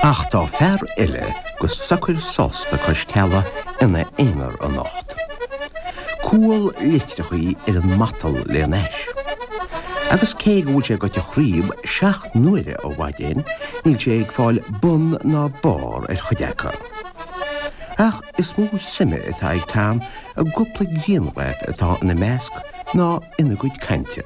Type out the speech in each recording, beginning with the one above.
Ach tá fear eile go socair sásta cois teallaigh ina aonar anocht. Cual leitreachaí ar an matal lena ais. Agus cé go bhfuil sé gaibhte tríobh seacht n-uaire ó mhaidin, níl sé ag fáil bun ná barr ar chuid acu. Ach is mó suime atá ag Tom i gcúpla grianghraf atá ina measc ná ina gcuid cainte.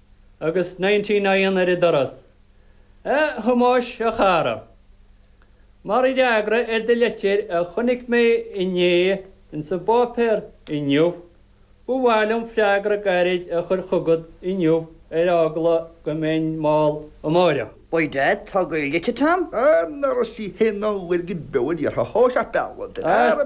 agus Ninety Nine ar an doras. A Thomáis, a chara. Mar fhreagra ar do leitir a chonaic mé inné insa bpáipéar inniu, ba mhaith liom freagra gairid a chur chugat inniu ar eagla go mbeinn mall amáireach. Beidh Daid togha i litir Tom. Ar ndóigh, sí hin an fhuil go beul iarrtha thó, ach beannacht ar.